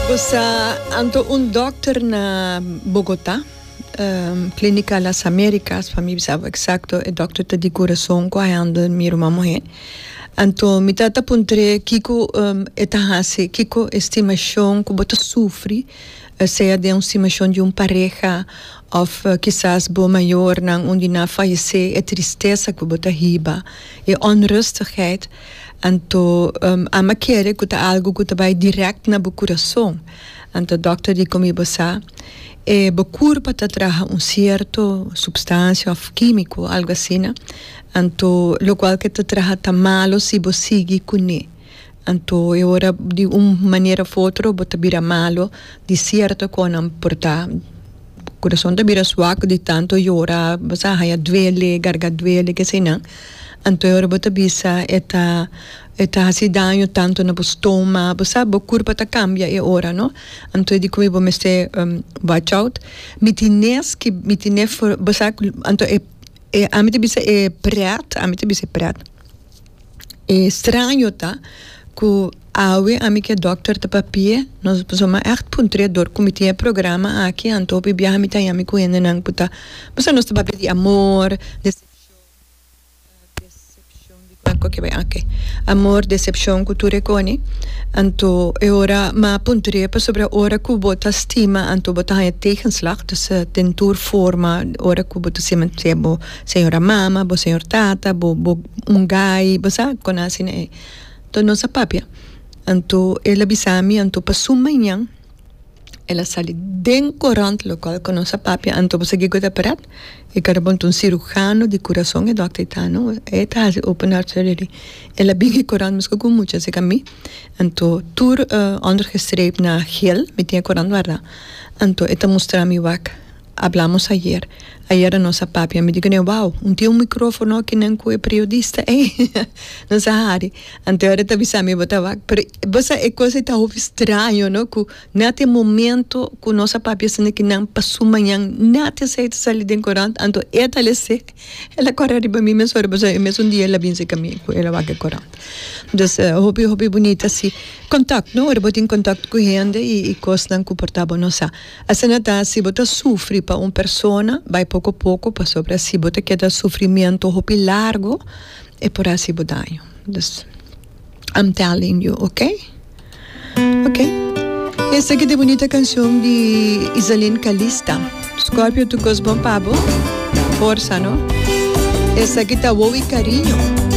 Bo sa anto un dokter na Bogota, Klinika Las Amerikas pa mi bisa bo eksakto, e dokter ta di kurason ku a handel mi ruma muhé. Anto mi ta ta puntr'é kiko e ta hasi, kiko e stimashon ku bo ta sufri, sea den un stimashon di un pareha òf kisas bo mayornan und'e nan fayesé, e tristesa ku bo ta hiba, e onrustigheid. Anto ama kere ku ta algu ku ta bai dirèkt na bo kurason. Anto dòkter di komi bo sa e bo kur pa ta traha un sierto supstansia òf kímiko, algu asina. Anto lokual ke ta traha ta malu si bo sigui kuné. Anto e ora di un manera òf otro bo ta bira malu di sierto kònnan por ta. Bo kurason ta bira swak di tantu yora, bo sa haña duele, garga duele, ke asina. Anto e ora bo ta bisa e ta e ta hasi daño tanto na bo stoma bo sa bo curpa ta cambia e ora no anto e di como bo mester watch out mi tin nes ki mi tin ne for bo sa anto e e ami ta bisa e pret ami ta bisa e pret e straño ta cu awe ami ke doctor ta papia nos pasobra mi echt pun tre dor cu mi tin e programa aki anto hopi biaha mi ta yami cu hendenan cu ta bo sa nos ta papia di amor decepcion. Amor decepcion cu tur e coni anto e ora ma punto di e pasobra ora cu bo ta stima anto bo ta haña tegenslag dus den tur forma ora cu bo ta stima sea bo señor a mama bo señor tata bo bo un gai bo sa con a asina e to nos a papia anto el a bisa mi anto pasun mañan el a sali den korant lokal ku nos a papia anto bo segui goda parat e kara bo anto un sirujano di kurason e dòkter ta no e ta hasi open heart surgery el a bin e korant mesku ku mucha así ku mi anto tur ondergestreept na hel mi tin e korant wardá anto e ta mustra mi wak. Hablamos ayer. Ayera nos a papia, mi di ku Newao, un tin un mikrofono aki nen ku e priodista ei, nos a hari. Anteor e ta bisa mi, bo ta wak. Pero bo sa e kos ei ta hopi straño, no? Ku nèt e momento ku nos a papia asina ki nan pasu mañan, nèt esei ta sali den korant. Anto e ta lese, el a kòrè riba mi mes ora, pasobra e mesun dia el a binse ka mi ku el a wak e korant. Dus, hopi hopi bunita si. Kòntakt, no? Ora bo tin kòntakt ku hende i kosnan ku por ta bo, nos a. Asina ta, si bo ta sufri pa un persona, bai poko poko, pasobra si bo ta keda sufrimiento hopi largo, e por hasi bo daño. Dus, I'm telling you, ok? Ok. Y esaki ta e bunita cancion di Isaline Calista. Scorpio tu cos bon pa bo? Forsa, no? Esaki ta Wou y Cariño.